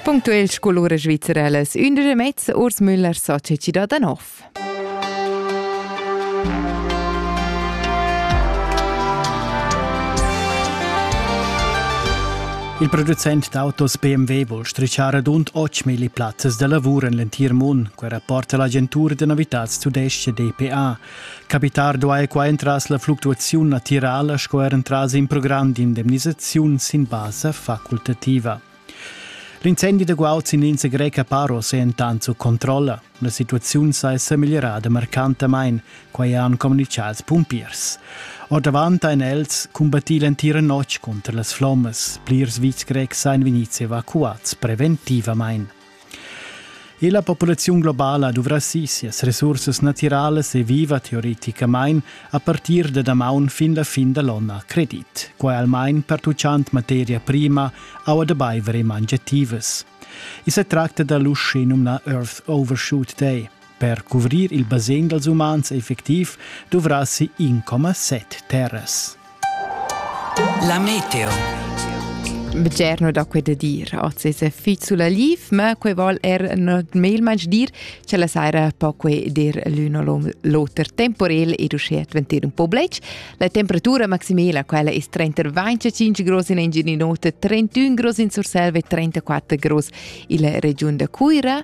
Punktuell scolura svizzerelas ündesch mezz Urs Müller Società da Nov. Il producent d'autos BMW vuol strichar rund 8.000 plazzas da lavur en l'entir mund, quai rapporta l'agentur de novitats tudesche DPA. Capitar duai qua entras la fluctuaziun natirala sco er entras in program d'indemnisaziun sin basa facultativa. L'incendi da guaud sin l'insa greca Paros è entant sut controlla. La situaziun sa è sa migliorada marcantamain, quai han communitgà ils pumpiers. Ordavant ein els combattì l'entira notg contra las flommas. Plirs vitgs grecs ein vegnids evacuads preventivamain. E la populaziun globala duvrassi sias resursas natiralas e viva teoreticamain a partir da damaun fin la fin da l'onn a credit, quai almain pertuchant materia prima, aua da baiver e mangiativas. I sa tracta da l'uschè numnà Earth Overshoot Day, Per cuvrir il basegn dals umans effectiv duvrassi 1,7 terras. La meteo. Bgerno da quei da dir. Oz è fizzula liv, ma quei vol er not melmanch dir, che la saira po quei dir l'uno l'oter temporel ed uschè adventir un po blec. La temperatura maximala quella è 35 grus in Engininota, 31 grus in Surselva e 34 grus in la regiun da Cuira.